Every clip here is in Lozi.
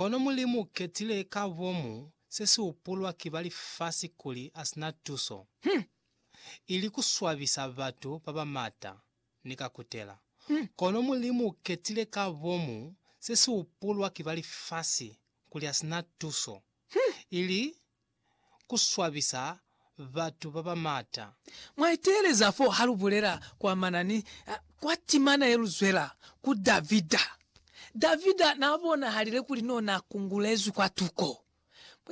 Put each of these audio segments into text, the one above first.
Kono Mulimu u ketile ka bomu se si upulwa ki ba lifasi kuli a si na tuso, hmm, ili ku swabisa batu ba ba mata ni ka kutela. Kono Mulimu u ketile ka bomu se si upulwa ki ba lifasi kuli a si na tuso, hmm, ili ku swabisa batu ba ba maata. Mwa iteeleza fo ha lu bulela kwa manani kwa timana ye lu zwela ku Davida. Davida n'a bonahalile kuli n'o n'a kungulezwi kwa tuko.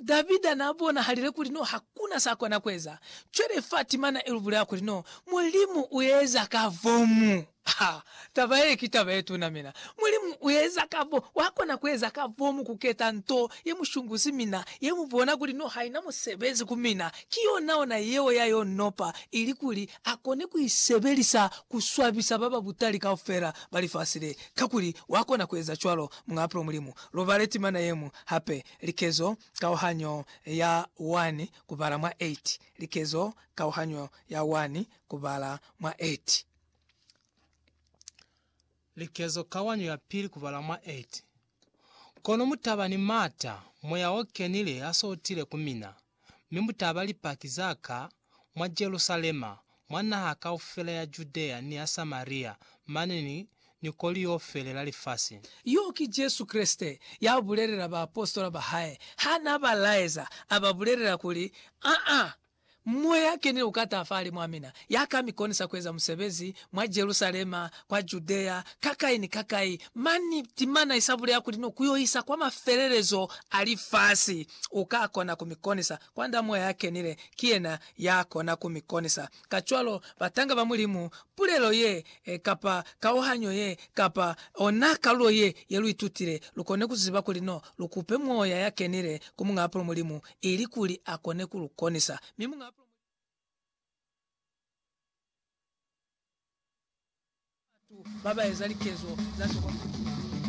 Davida n'a bonahalile kuli n'o ha ku na s'a kona ku eza. Cwale fa timana i lu bulela kuli n'o Mulimu u eza ka vomu. Ha, taba ye ki taba ye tuna mina. Mulimu u eza ka bo, wa kona ku eza ka bo mu ku keta nto ye mu shunguzi mina, ye mu bona kuli no haina musebezi ku mina. Ki yona ona yeo ya yo nopa, ili kuli a kone ku i sebelisa ku swabisa ba ba butali kaufela ba lifasi le. Kakuli wa kona ku eza cwalo, Muñ'a Pulo Mulimu. Lu bale timana ye ñwi hape, likezo kauhanyo ya 1 kubala mwa 8, likezo kauhanyo ya 1 kubala mwa 8. Likezo Kawanyo ya Pili Kubala mwa 8 Kono mutaba ni maata, moya o kenile ha so utile ku mina, mi mutaba Lipaki za ka mwa Jerusalema, mwa naha kaufela ya Judea ni ya Samaria, mane ni, ni ko liofele la lifasi. Yo ki Jesu Kreste ya bulelela baapositola ba hae ha n'a ba laeza, a ba bulelela kuli, Aa, Moya ya kenile uka taha fahali mwa mina, ya ka mi konisa kueza musebezi mwa Jerusalema, kwa Judea, kakai ni kakai. Mani, timana isa buleha kuli no ku yo isa kwa mafelelezo a lifasi. Uka kona ku mi konisa, kwand'a Moya ya kenile, ki yena ya kona ku mi konisa. Kacwalo, batanga ba Mulimu, pulelo ye, kapa kauhanyo ye, kapa ona kalulo ye, ye lu itutile, lu kone ku ziba kuli no lu kupe Moya ya kenile ku Muñ'a Apulu Mulimu, ili kuli a kone ku lu konisa. Mi muñ'a pulo mwa lika la Mulimu ali, Batu ba ba eza likezo za sikolokoti.